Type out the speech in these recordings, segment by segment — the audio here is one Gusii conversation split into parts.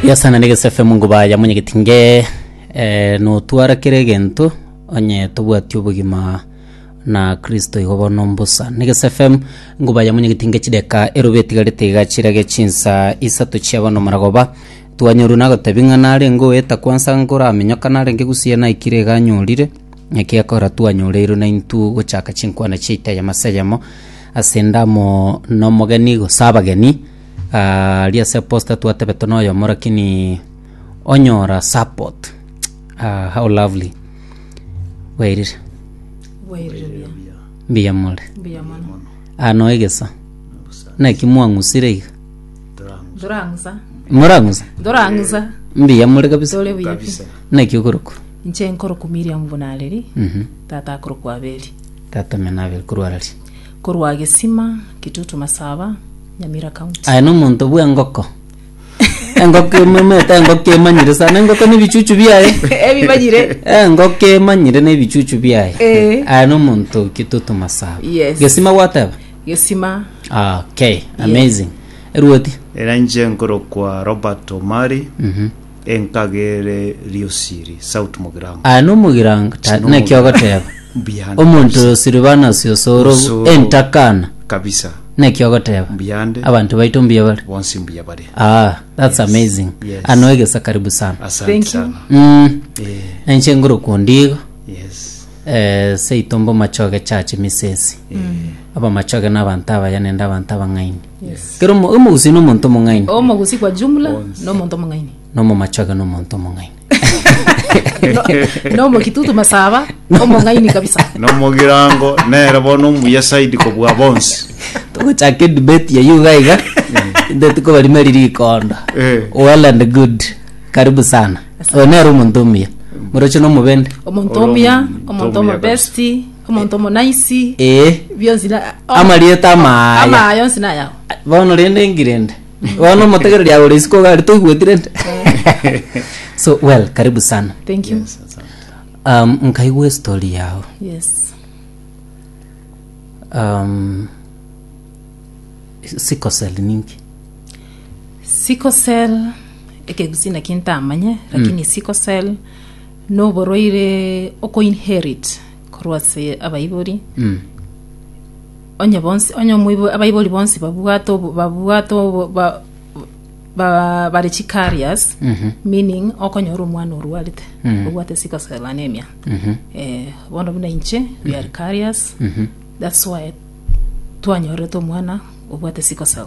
Yasana ne gesefe mungu baya monyegeti nge eh, notwara kera egento onye tobwati obogima na kristo igo bono mbusa ne gesefe ngu baya monyegeti nge chideka erobe etigarete iga chirage chinsa isato chia bono maragoba twanyoru nagotebi ng'a narenge oeta kwansa nkoramenyoka narenge gusie naikire iga anyorire Ekiagera twanyoreirwe naintwe gochaka chinkwana chiaito eyemo ase eyemo, ase endamo nomogeni gose abageni, ah, aria ase posta twatebetwe noyomo lakini onyora support. Ah, how lovely. Bwairire? Bwairire buya. Mbuya more. Mbuya mono. Ah, noe gesa. Naki mwang'usire iga. Dorang'usa. Morang'usa? Dorang'usa. Mbuya more kabisa. Tore buya pi. Naki okorokwa? Inche nkorokwa Miriamu buna Areli, tata akorokwa Abeli. Tata omino Abeli korwa Areli. Korwa Gesima, Kitutu Masaba, Nyamira County. Aye nomonto bw'engoko. Engoko emomete, engoko emanyire sana, engoko nebichuchu biaye. Ebimanyire. Eh, engoko emanyire nebichuchu biaye. Eh. Aye nomonto Kitutu Masaba. Yes. Gesima gwateba? Gesima. Ah, okay, amazing. Eruoti? Era inche nkorokwa Robert Omari. Mhm. Enkagere riosiri sauti mogirango. Aya nomogirango ta Sino naki omogirango. ogoteba. Mbuyande Omonto kabisa. oyo siribanasi osoro Osoro. entakana Kabisa. naki ogoteba. Mbuyande. Abanto baito mbuya bare. Bonsi mbuya bare. Ah, that's Yes. amazing. Yes. Ano egesa karibu sana. Asante Thank you. sana. Mm. Eh, Enche nguru kundigo. yes. Eh, seito mbo machoge chachi misesi. Aba machoge na abanto abaya nende abanto abang'aini. Kera omo- omogusi nomonto omong'aini, Omogusi kwa jumla nomonto omong'aini. nomomachoge nomonto omong'aini. Nomokitutu masaba omong'aini kabisa. nomogirango nere bono omuya saidi kobua bonsi Togochaka edebate yayio iga iga. Intwe tikobarima eriri rikondo. Eh. Well and good. Karibu sana. Oyo nere omonto omuya. Moroche nomobende. Omonto Oro omuya, omonto omonto omuya omobesti, omonto omonaisi Ee. bionsi na- o- Amarieta o- amaya. amaya yonsi nayao bono rende ngirende bono omotegereri agore isiko iga aria toigweti rende so well karibu sana thank you yes. um, nkaigwa estori yao um, sikosel ninki sickle cell ekegusina kintamanye lakini sickle cell Noborwaire okoinherit korwa ase abaibori, onye bonsi onye omoibo- abaibori bonsi babwate obo- babwate obo- ba- ba- bare chicarriers meaning okonyora omwana orwarete obwate sickle cell anemia eh, bono buna inche we are carriers that's why twanyorete omwana obwate sickle cell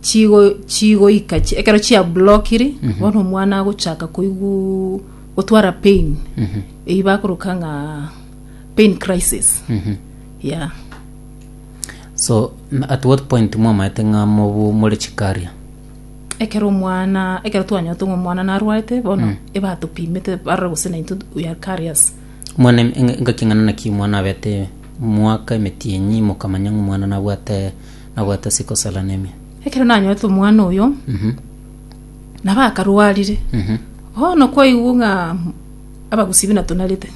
chigo chigoika chi- ekero chiablokiri bono omwana agochaka koigu gotwara pain Mhm. eyio bakoroka ng'a pain crisis Mhm. ya so n- at what point mwamaete ng'a mobu more chikaria ekero omwana ekero twanyorete ng'a omwana narwarete bono ebatopimete barora gose naintwe we are carriers mwana em- enga- engaki eng'ana naki omwana abete mwaka emetienyi mokamanya ng'a omwana nabwate Nabwate ase kosarana ime. Ekero nanyorete omwana oyo, nabo akarwarire. Bono kwaigwa ng'a abagusii buna tonarete,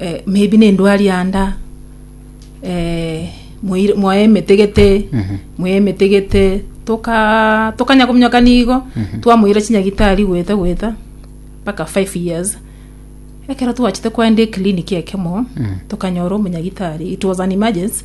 eh, maybe na endwari anda, eh, moir- moe emetegete, moe emetegete, toka tokanya kominyokania igo, twamoira chinyagitari gweta gweta, mpaka five years. Ekero twachete koenda eclinic ekemo, tokanyora omonyagitari, it was an emergency,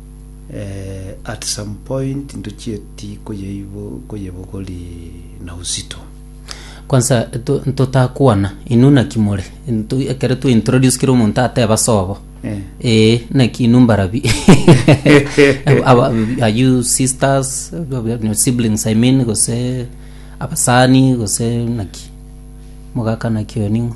eh, at some point ntochieti koyeibo- koyebogori na uzito Kwanza to- ntotakwana inwe naki more Ntu- ekero twa introduce kera omonto ateba sobo Eh. ee naki inwe mbarabi Aba- are you sisters no, siblings i mean gose abasani gose naki mogaka naki oyo ning'o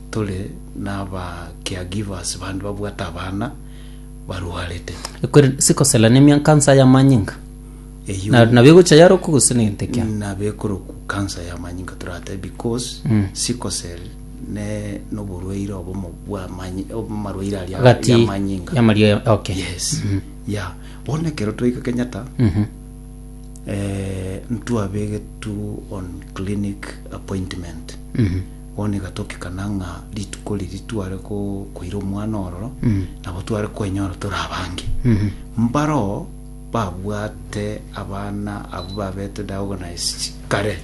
Tore naba caregivers bande babwate abana barwarete. Ekweri sikosela nemia kansa ya manyinga. Eyio Na nabo egocha yarokwa gose negente kia. nabekorokwa kansa ya manyinga torate because Mm. sickle cell ne noborwaire obomo bwa manyi obomarwaire aria Agati ya manyinga ya maria ya- okay. yes ya bono ekero twaika Kenyatta Mhm. eh, ntwabegetwe on clinic appointment Mhm. Bono iga togekana ng'a rituko riria tware koira omwana ororo, nabo tware kwenyora tore abange. Mbareo babwate abana abwo babete diagnosed kare.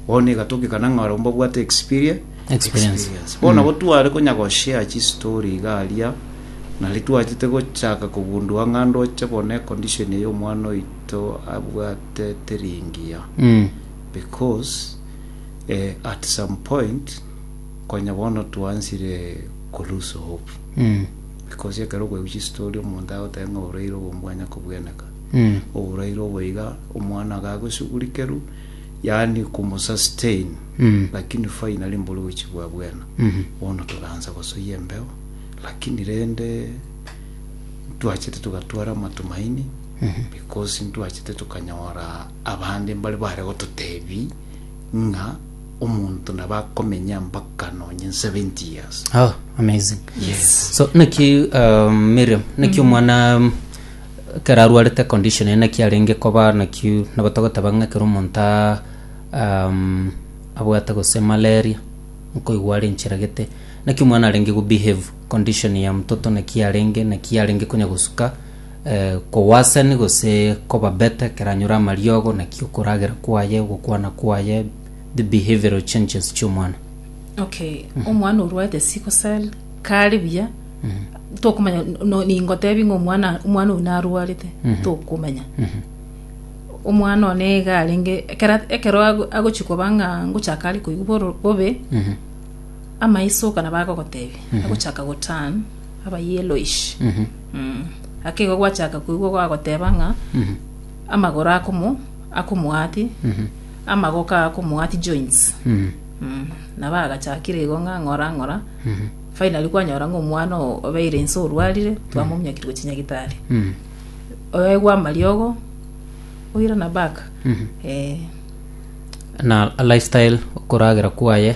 Bono iga togekana ng'a barabwo mbabwate experie- Experience. experience. Bono nabo tware konya goshare chistory iga aria, nari twachete gochaka kogundua ng'a ndoche bono econdition eye omwana oito abwate teri engiya because Eh at some point konya bono twansire ko loose hope because ekero okoigwa chistory omonto agoteba ng'a oboraire obo mbwanya kobweneka oboraire obo iga omwana agagosugurikerwa yaani komo sustain lakini finally mbore gochia bwa bwena bono togaansa gosoyia embeo lakini rende ntwachete togatwara amatumaini because ntwachete tokanyora abande mbare bare gototebia ng'a omonto nabo akomenya mpaka nonye 70 years Oh, amazing. yes So naki um, Miriam, naki omwana um, kera arwarete condition eye naki arenge koba naki nabo togoteba ng'a kera omonto a- um, abwate gose malaria nkoigwa are enchera gete naki omwana arenge go behave condition ya mtoto naki arenge naki arenge konya gosuka Kowasani gose kobabete keranyore amariogo naki okoragera kwaye, ogokwana kwaye, the behavioral changes chi'omwana. Okay, omwana orwaete sickle cell kare buya tokomanya no- ningotebi ng'a omwana omwana oyo narwarete tokomanya omwana one iga arenge ekero ekero ago- agochia koba ng'a ngochaka are koigwa boro- bobe amaiso oka nabo agogotebi agochaka goturn aba yellowish. Mm. Ake igo gwachaka koigwa gwagoteba ng'a amagoro akomo akomoati amagoka akomoati joints. Mm. Mm. Na bagachakire igo ng'a ng'ora ng'ora. Finally kwanyora ng'a omwana o- obeire inse orwarire twamomunyakire gochia nyagitari. Mm. Oegwa amariogo oirana back. Eh. na lifestyle okoragera kwaye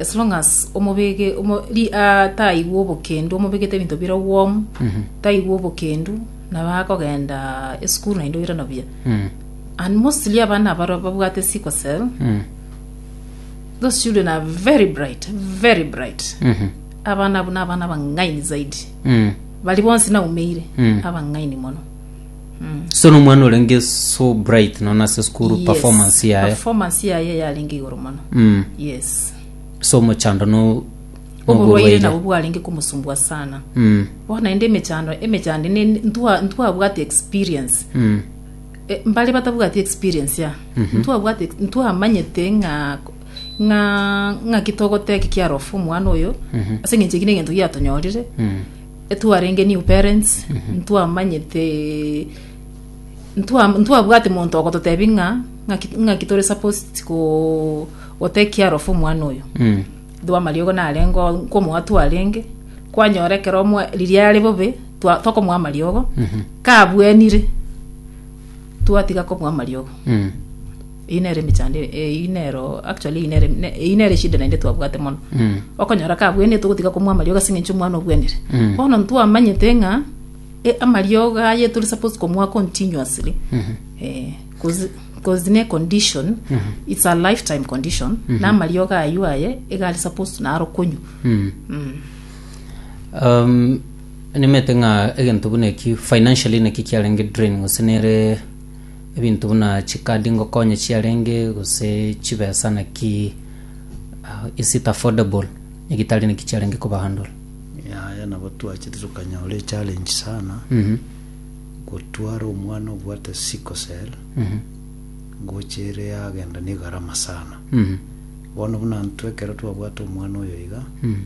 As long as omobege omo, ri, ah, taigwa obokendu omobegete ebinto bire warm taigwa obokendu nabo akogenda esukuru naende oira na buya Mm. and mostly abana abaro babwate sickle cell Mm. those children are very bright very bright Mhm. abana abwo nabana abang'aini zaidi Mm. bari bonsi naumeire Mm. abang'aini mono so nomwana orenge so bright nona ase school Yes, performance yaye performance yaye yarenge igoro mono Mm. yes so mochando no oborwaire nabo bwarenge komosumbua sana Mm, bono naende emechando emechando ene ntwa- ntwabwate experience mm, Eh, mbare batabwati experience ya ntwabwate ntwamanyete ng'a ng'a ng'a kitogoteki kiarofa omwana oyo ase ng'enche ekine egento giatonyorire mm, Twarenge new parents ntwamanyete ntwa ntwabwate monto ogototebi ng'a ng'aki ng'aki tore supposed ko go take care of omwana oyo Mm. Though amariogo narengo nkomoa twarenge kwanyora ekero omwa riria are bobe twa tokomoa amariogo kabwenire twatiga komoa amariogo Mm. Eyio nere emechando eyio nero actually eyio nere eyio nere eshida naende twabwate mono okonyora kabwenete ogotiga komwa amariogo ase eng'encho omwana obwenire bono ntwamanyete ng'a e- amariogo aye tore supposed komwa continuously eh, cause cause ne condition it's a lifetime condition na amariogo aywo aye iga are supposed naro konywa um, nimete ng'a egento buna eki financially naki kiarenge drain gose nere Ebinto buna chikadi ngokonya chiarenge gose chibesa naki ah, is it affordable egitari naki chiarenge kobahandle yaya nabo twachete tukanyora echallenge sana Mhm, gotwara omwana obwate sickle cell mhm, ngochere yagenda ne gharama sana mhm, bono buna intwe ekero twabwate omwana oyo iga mhm.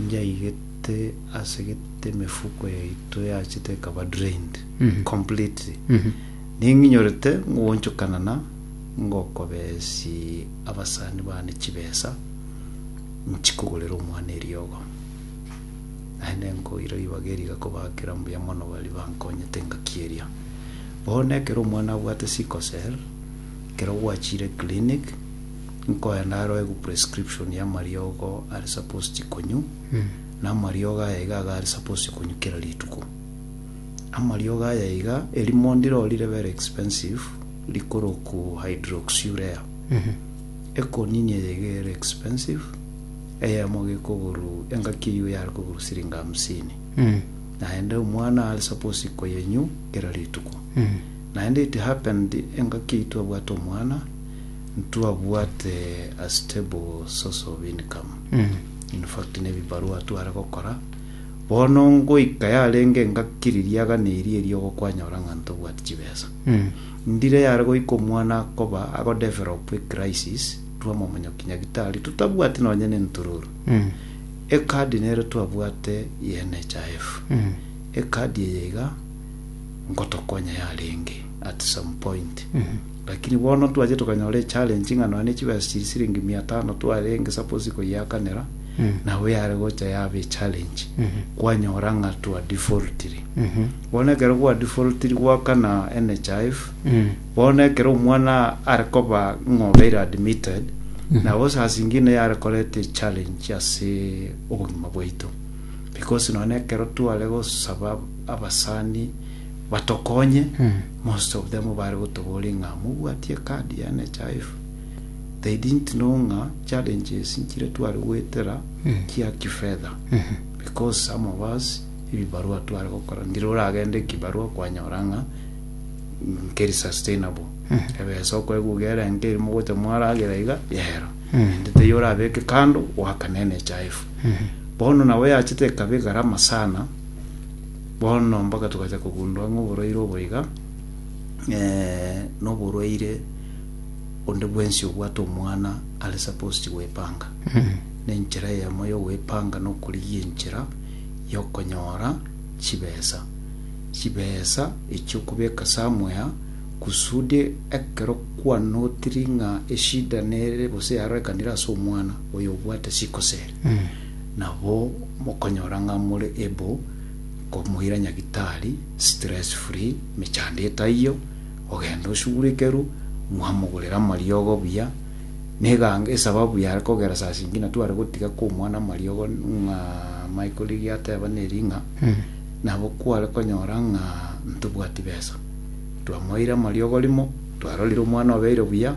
njaigete asegete emefuko yaito yachete ekaba drained completely. Ning'inyorete ngoonchokana na ngokobeesi abasani baane chibesa nchi kogorera omwana eriogo. Naende nkoira ribaga eri igakobaakera mbuya mono baria bankonyete engaki eria. Bono ekero omwana abwate sickle cell, ekero gwachiire clinic, nkoenda naroegwe prescription ya amariogo are supposed konywa, na amariogo aya iga iga are supposed konywa kera rituko. Amariogo aya iga, erimo ndiro rire very expensive rikorokwu hydroxyurea. Ekonini eye iga ere expensive, eyemo gekogoru engaki eyio yare kogoru siringi hamsini. Naende omwana are suppose koyenywu kera rituko. Naende it happened engaki eyio twabwate omwana, ntwabwate a stable source of income. In fact, nebibarua tware gokora, Bono ngoika yarenge engaki ririaga neri erio ogokwanyora ng'a ntobwati chibesa. Ndire yare goika omwana akoba ago develop a crisis rwa momonyoki nyagitari totabwati nonye ne ntururu. E card nero twabwate ye NHIF. E card eye iga ngotokonya yarenge at some point. Lakini bono twachire tokanyora echallenge ng'a nonya ne chibesa chiri siringi mia tano twarenge suppose koyiakanera, nabo yare gocha yaba echallenge, kwanyora ng'a twa defaultire. Bono ekero gwa defaultiri goakana NHIF, bono ekero omwana are koba ng'a obeire admitted, nabo sasa inki ene yare koreta echallenge ase obogima bwaito. Because nonya ekero tware gosaba abasani batokonye, Most of them bare gotoboria ng'a mobwatie card ya NHIF, they didn't know ng'a challenges nchire tware goetera chia kifedha because some of us ebibarua tware gokora ndire oragende ekibarua kwanyora ng'a nkeri sustainable ebesa okoeguga ere enke eri mogocha mwaragera iga yero ende teiyo orabeke kando goakana NHIF bono nabo yachete ekaba egarama sana Bono mpaka togacha kogundwa ng'a oborwaire obo iga noborwaire onde bwensi obwate omwana are supposed gwepanga. Nenchera eyemo yogwepanga nokorigia enchera yokonyora chibesa. Chibesa echio okobeka somewhere kusudi ekero kwanotiri ng'a eshida nere gose yarorekanire ase omwana oyo obwate sikoseri nabo mokonyora ng'a more able nkomoira nyagitari stress free mechando etaiyo ogenda osugurekeru mwamogorera amariogo buya neganga esababu yare kogera sasa inki natware gotiga kwa omwana amariogo ng'a Michael riria ateba neri ng'a nabo kware konyora ng'a ntobwati besa twamoeire amariogo rimo twarorire omwana obeire buya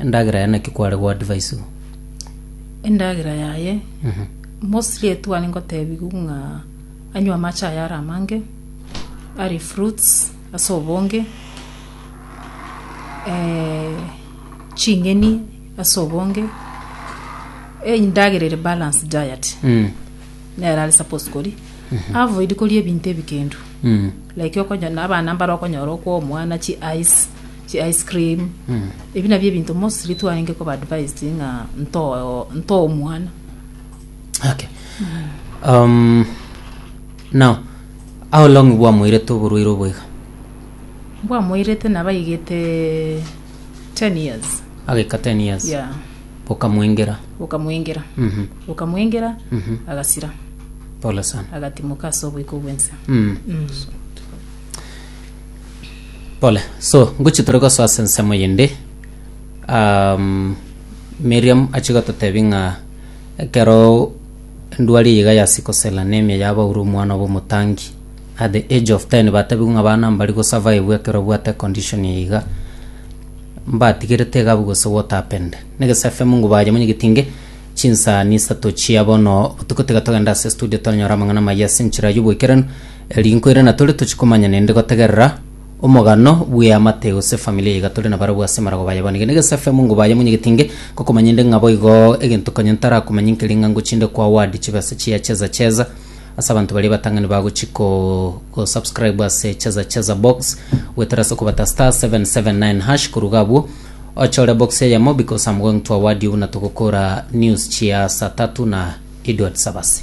Endagera yaye naki kware goadva isiko? Endagera yaye, mostly etwane ngotebigu ng'a anywe amache aye are amange, arie fruits ase obonge, eh, ching'eni ase obonge, endagera ere balanced diet nere are supposed koria. Avoid koria ebinto ebikendu, like okonyora na abana mbare okonyora okwa omwana chi ice. chi ice cream, ebi nabio ebinto mostly twarenge koba advised ng'a nto- ntoe omwana. Okay. Um, now, how long bwamoirete oborwaire obo iga? Bwamoirete nabaigete 10 years. Agaika 10 years. Yeah. Bokamoengera. Bokamoengera. Mhm. Bokamoengera, Mhm. agasira. Pole sana. Agatimoka ase oboiko bwense. Mm. Mm. Pole. So, ngochi tore gosoa ase ensemo yende. Um, Miriam achi gototebi ng'a ekero endwari eye iga yasi kosela nemia ya Paulo omwana obo omotangi. At the age of 10 batebiwe ng'a abana mbari go survive ekero obwate condition eye iga. Mbatigerete iga abwo gose what happened. Nege safe mungu baye monye getinge chinsani isato chia bono botuko tiga togenda ase studio twanyora amang'ana maya ase enchera y'oboikeranu. Rinku ere natore tochie komanya nende gotegerera omogano bw'eamate gose familia iga tore nabarabwo ase marago baye bonige negesafe mungu baye monyegetinge gokomanya inde ng'a boigo egento konya ntarakomanye nkeri ng'a ngochinde kwa word chibe ase chia cheza cheza ase abanto baria batang'ani bagochi ko go subscribe ase cheza cheza box gwetera ase okobata star 779 hash koruga abwo ochore box eyemo because am going to a word obuna togokora news chia saa tatu na Edward Sabasi.